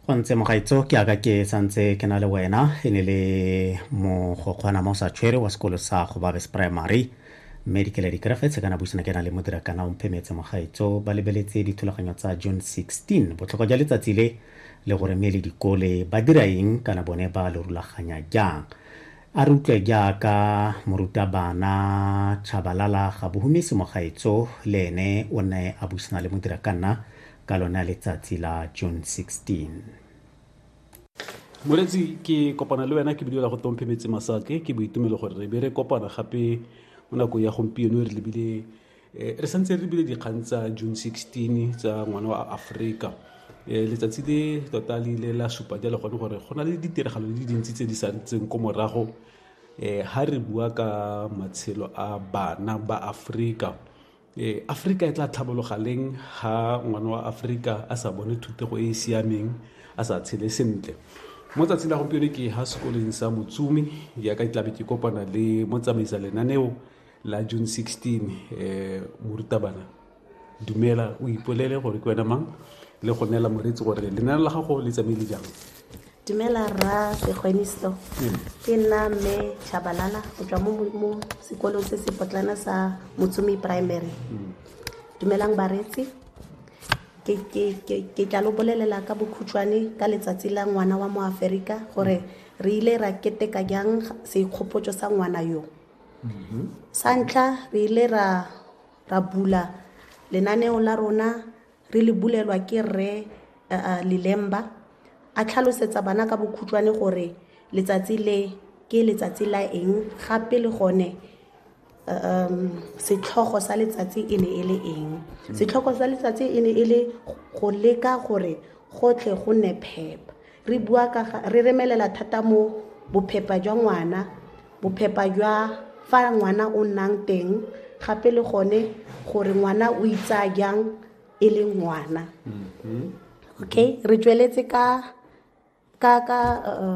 go ntse mogaitso ke aka ke santse ke na le wena e ne le mogokgwana mo sa tshwere wa sekolo sa gobabes primary mme dikele dikerefetse kana buisana ke na le modirakana o mphemetse mogaitso ba lebeletse dithulaganyo tsa june 16 botlhokwa jwa letsatsi le le gore mme le dikole ba dira eng kana bone ba lo rulaganya jang A re utlwe jaaka morutabana Tshabalala Gabohumisi Mogaetso le ene o ne a busana le Modirakanna ka lone letsatsi la June 16. Moretsi, ke kopana le wena ke bilela go Tomphe Metsi Masake. Ke boitumelo gore re be re kopana gape mo nakong ya gompieno re lebile Eh, re santse re bile dikgang tsa june 16 tsa ngwana wa aforika eh, letsatsi le tota le ile la supa jalo gone gore go na le ditiragalo le dintsi tse di santseng ko morago um eh, ha re bua ka matshelo a bana ba aforika um aforika e tla tlhabologa leng ha ngwana wa aforika a sa bone thutego e e siameng a sa tshele sentle mo tsatsing la gompieno ke ha sekoleng sa motsumi jaaka ke tlabe ke kopana le motsamaisa lenaneo la june 16 um eh, morutabana dumela o ipolele gore ke wena mang le go neela moreetsi gore lenane la gago le tsamaile jang dumela rra segweniso hmm. ke nna mme chabalala go tswa mo sekolong se se potlana sa motsumi primary hmm. dumelang bareetsi ke tla lo bolelela ka bokhutshwane ka letsatsi la ngwana wa mo aferika gore re ile ra keteka jang seikgopotso sa ngwana yo mm-hmm. sa ntlha re ile ra ra bula lenaneo la rona re le bulelwa ke rre eh, eh, lelemba a tlhalosetsa bana ka bokhutshwane gore letsatsi le ke letsatsi la eng gape le gone um setlhogo sa letsatsi e ne e le eng mm-hmm. setlhogo sa letsatsi e ne e le go leka gore gotlhe go nne phepa Re bua ka ga re remelela thata mo bophepa jwa ngwana, bophepa jwa fa ngwana o nnang teng gape le gone gore ngwana o itsaya jang e le ngwana. Okay, re tsweletse ka ka ka uh,